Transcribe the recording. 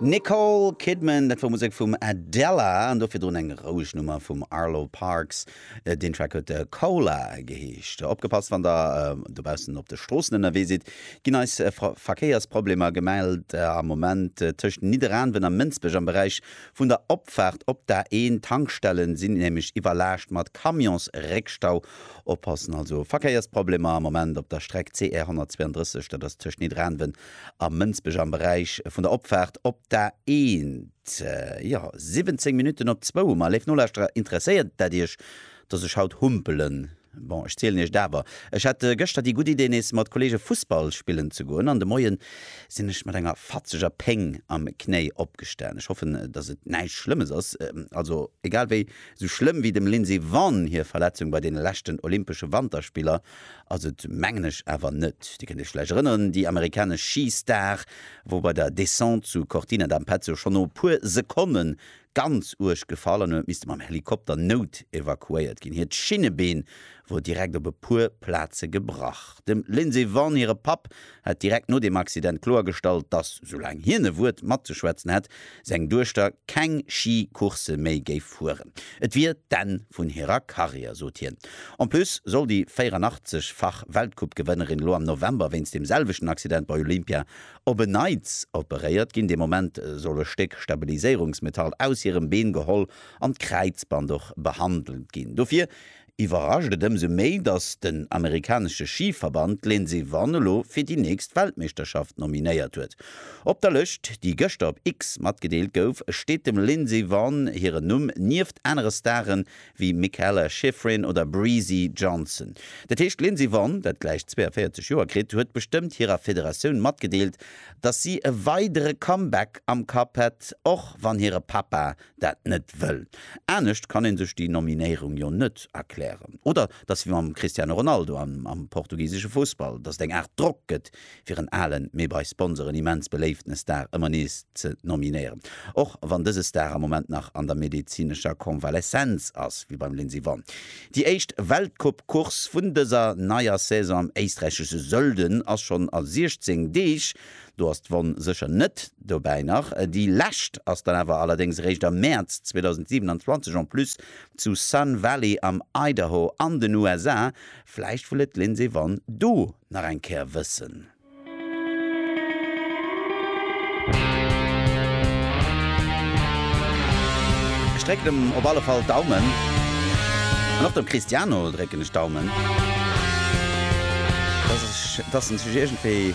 Nicole Kidman, dat wor Musek vum Adela an do virdrun eng roueg Nummer vum Arlo Parks. Deen Track huet Cola geheescht. Opgepasst, wann der dobaussen op de Stroossen ënnerwee sidd, ginn eis Verkéiersproblemer gemellt am Moment tëscht Nidderaanwen a Mënsbech. Am Beräich vun der Opfaart op d'A1, d'Tankstelle sinn nämlech iwwerlaascht mat Camionsréckstau. Oppassen also, Verkéiersproblemer am Moment op der Streck CR 132, dat ass tëscht Nidderaanwen a Mënsbech am Beräich vun der Opfaart op d'A1. Jo, 17 Minutten op zwou hu mer. Léif Nolauschterer, interesséiert dat Iech, dass ech haut humpelen? Bon, ech zielen Iech et awer. Ech hat gëschter déi gutt Idee, nees mat Kolleege Fussball spillen ze goen, an de Moien sinn ech mat enger fatzeger Péng am Knéi opgestan. Ech hoffen, dass et näischt Schlëmmes ass. Also, egal wéi, esou schlëmm wéi dem Lindsey Vonn hir Verletzung bei deene leschten Olympesche Wanterspiller ass et mengen ech awer net. Dir kënnt Iech vläicht erënneren, déi amerikanesch Schi-Star wor bei der Descente zu Cortina d'Ampezzo schonn no e puer Sekonne ganz uerg gefall an huet misste mam Helikopter nout-evakuéiert ginn. Hiert Schinnebeen wor direkt op e puer Plaze gebrach. Dem Lindsey Vonn hire Papp hätt direkt no deem Accident kloergestallt, dass, soulaang hien e Wuert matzeschwätzen hätt, seng Duechter keng Schi-Coursë méi géif fueren. Et wier d'Enn vun hirer Karriär, sot hien. En plus soll déi 84 fach Weltcoupe-Gewënnerin elo am November wéinst deem selwechten Accident bei Olympia op en Neits operéiert ginn. Dee Moment soll e Stéck Stabiliséierungsmetall aus hirem Been geholl an d'Kräizband och behandelt ginn. Dofir iwwerrascht et ëmsou méi, datt den amerikanesche Schiverband d'Lindsey Vonn elo fir déi nächst Weltmeeschterschaft nominéiert huet. Op der Lëscht, déi gëschter op X matgedeelt gouf, steet dem Lindsey Vonn hiren Numm nieft anere Stare wéi Mikaela Shiffrin oder Breezy Johnson. Dat heescht, d'Lindsey Vonn, dat gläich 42 Joer kritt, huet bestëmmt hirer Federatioun matgedeelt, datt si e weidere Comeback am Kapp hätt, och wann hire Papa dat net wëll. Anescht kann ee sech déi Nominéierung jo net erklären. Oder et ass wéi mam Cristiano Ronaldo am portugisesche Fussball, datt et eng Aart Drock gëtt, fir en alen, mee bei Sponsoren immens beléiften Star ëmmer nees ze nominéieren. Och wann dëse Star am Moment nach an der medezinescher Convaleszenz ass, wéi beim Lindsey Vonn. Déi éischt Weltcup-Course vun dëser neier Saison am éisträichesche Sölden ass schonn a 16 Deeg. Do ass d'Wonn sécher net dobäi. Nach déi lescht ass dann awer allerdéngs eréischt am Mäerz 2027 en plus zu Sun Valley am Idaho an den USA. Vläicht wëll et d'Lindsey Vonn do nach eng Kéier wëssen. Ech drécken em op alle Fall d'Daumen. An och dem Cristiano drécken ech d'Daumen, dass en sech iergendwéi